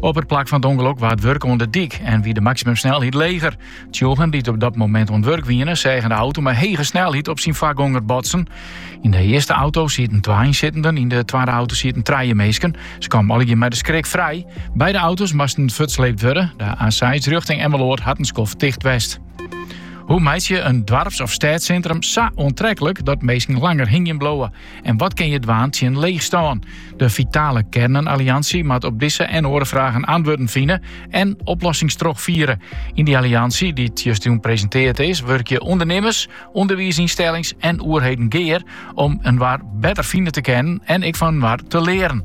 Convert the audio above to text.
Op it plak fan it ûngelok waard wurke oan de dyk en wie de maksimumsnelheid leger. Tsjûgen dy't op dat momint oan it wurk wiene, seagen de auto mei hege snelheid op syn foargonger botsen. Yn de earste auto sieten twa ynsittenden, yn de twadde auto sieten trije minsken. Se kamen allegear mei de skrik frij. Beide auto's moasten fuortsleept wurde. De A6 rjochting Emmeloord hat in skoft ticht west. Hoe meitsje in doarps of stêdssintrum sa oantreklik dat minsken langer hingjen bliuwe? En wat kinne je dwaan tsjin leechstân? De Vitale Kernen-Alliansje moat op dizze en oare fragen antwurden fine en oplossings trochfiere. Yn dy alliansje, dy't justjûn presintearre is, wurkje ûndernimmers, ûnderwiisynstellings en oerheden gear om inoar better fine te kennen en ek fan inoar te learen.